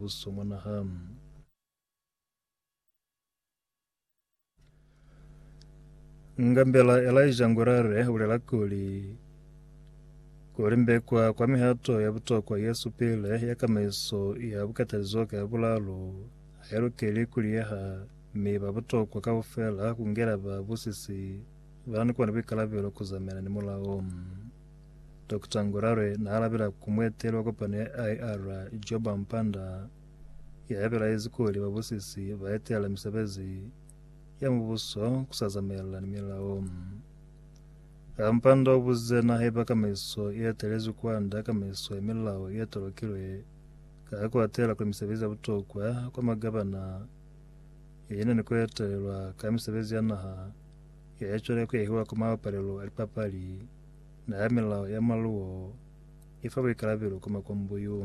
Mubuso mwa naha. Ngambela Elijah Ngurare ulela kuli, kulimbekwa kwa mihato ya butokwa ye supile ya kamaiso ya bukatalizo ka bulalo hailukeli kuliyeha mi ba butokwa kaufela kungela ba busisi ba ni kona buikalabelo kuzamayana ni mulao. Dokota Ngurare naalabela ku mueteli wa kopano ya IR, Joba Mpanda, yabelaezi kuli babusisi baetelela misebezi ya mubuso kusazamaelana ni milao. A Mpanda ubuzize na haiba kamaiso ietelezwi kwanda kamaiso ya milao ietolokilwe ka kuatela kuli misebezi ya butokwa kwa magabana yena ni kuetelelwa ka misebezi ya naha yaecwele kuyahiwa kwa mapalelo a lipapali. Nga ha milao ya maluwo i fa buikalabelo ku makwambo yo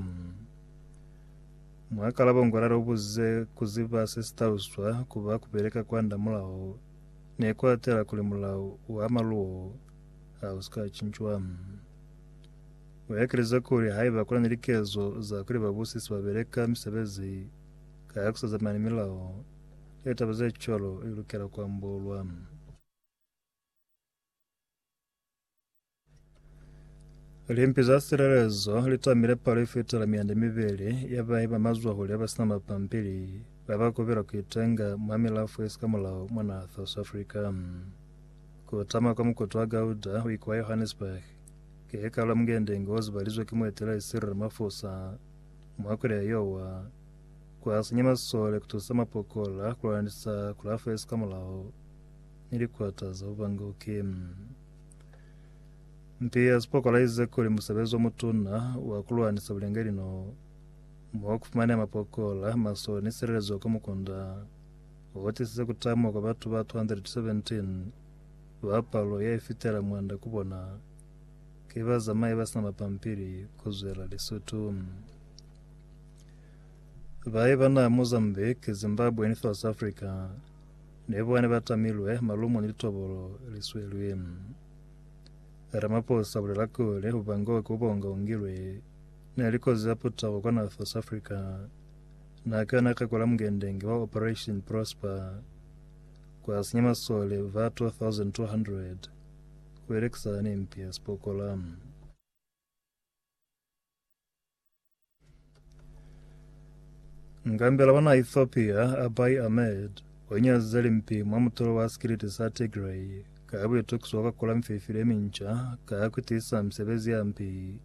mu ha kalabo ngwala lu buze ku ziba se si taluswa ku ba ku beleka kwa nda mulao ne ku atela kuli mulao wa maluwo ha u si ka cincwa. U ekelize kuli haiba ku na ni likezo za kuli babusisi ba beleka misebezi ka ku sa zamani milao, litaba ze cwalo li lukela ku ambolwa. Limpi za silelezo li tamile palo ye fitela mianda mibeli ya bahi ba mazwahule ya ba sina mapampili ba ba kubela ku itenga mwa milafo ye si ka mulao mwa naha South Africa. Ku tama kwa mukutu wa Gauda ho ikwa Johannesburg ki he kalo mungendenge o zibalizwe ki mueteleli Cyril Ramaphosa mwa kweli ya Yowa kwa sinya masole ku tusa mapokola ku lwanisa kulafo ye si ka mulao. ni likwata za bubanguki. Mpi ya sipokola ize kuli musebezi omutuna wa kulwanisa bulengeli no mo kufumanea mapokola, maso ni silelezo kwa mukunda otisize kutama kwa batu ba 217 ba palo ya ifitela mwanda ku bona ki bazamai basina mapampili kuzwela Lesotho. Baye bana Mozambique, Zimbabwe ni South Africa Ne ba ne ba tamilwe malumo ni litobolo li swelwi. Ramaphosa bulela kuli ku bangiwa ku bonga ungilwe ne li kozi ya putako kwa naha South Africa na ka yona ka kula mngendenge wa Operation Prosper kwa sinya masole ba 2200 ku elekisana ni mpi ya sipokola. Ngambela bana Ethiopia Abiy Ahmed wanyazize limpi mwa mutulo wa sikiliti sa Tigray ka buitukiso bwa kakula mifeifili yeminca ka kutiisa misebezi ya mpi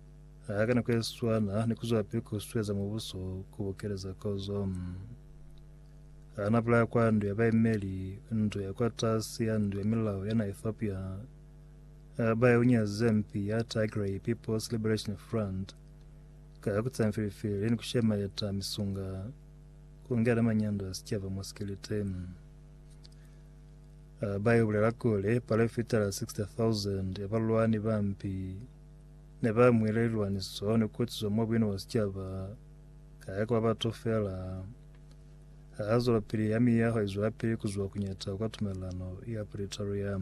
haka nako yeswana ni kuzwapili kusueza mubuso kubukeleza kozo. Hana bulaya kwa ndu ya baimeli ndu ya kwa tasi ya ndu ya milao yana Ethiopia Abiy unyazize mpi ya Tigray People's Liberation Front Ka ya ku tsaya mifilifili ni ku shemeleta misunga, ku ngena manyando a sicaba mwa sikelete. Ba yo bulela kuli, palo ye fitela 60,000 ya balwani ba mpi ne ba mwile lilwaniso ni ku kwetiswa mwa buino bwa sicaba, ka ya ku ba batu fela. Ha zwelopili ya miyaho i zwelapili ku zwa kuñata kwa tumelelano ya Pretoria.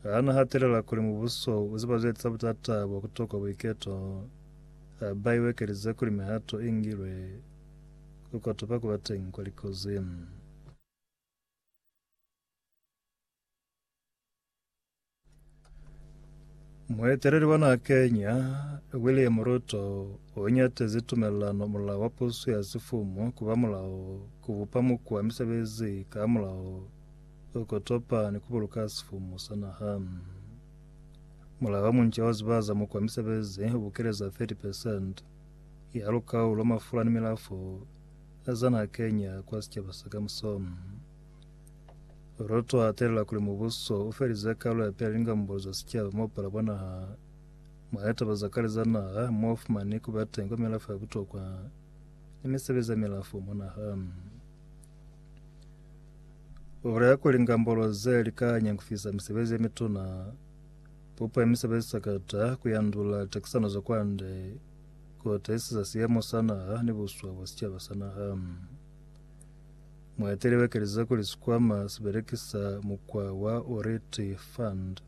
Ha na hatelela kuli mubuso u ziba ze eza butata bwa ku tokwa buiketo, ha ba iwekelize kuli mihato i ngilwe ku kotopa ku ba teñi kwa likozi. Mueteleli wa naha Kenya, William Ruto, u ñatezi tumelelano mulao wa pusu ya sifumu ku ba mulao ku bupa mukwa misebezi ka hamulaho Ku kotopa ni ku buluka sifumu sa naha. Mulala wa munca wa zibaza mo kwa misebezi u bukeleza 30 percent ya lukau lwa mafula ni milafo za naha Kenya kwa sicaba sa kamuso. Ruto a telela kuli mubuso u felize kalu ya peli lingambulo za sicaba mo pala bwa naha, mwa litaba za kale za naha, mo fumani ku ba teng kwa milafo ya butokwa ni misebezi ya milafo mwa naha. Ura ya kuli ngambolo ze li ka nyangufisa misebezi ye mituna pupa imisebezi sakata kuyandula takisano za kwande kuotaisiza siyemo sa naha ni buswa bwa sicaba sa naha mueteli wekeleza kuli sikwama sibelekisa mukwa wa oriti fund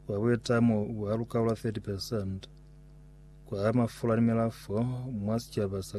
wa buitamo bwa lukaula 30 percent kwa mafula ni milafo mwa sicaba sa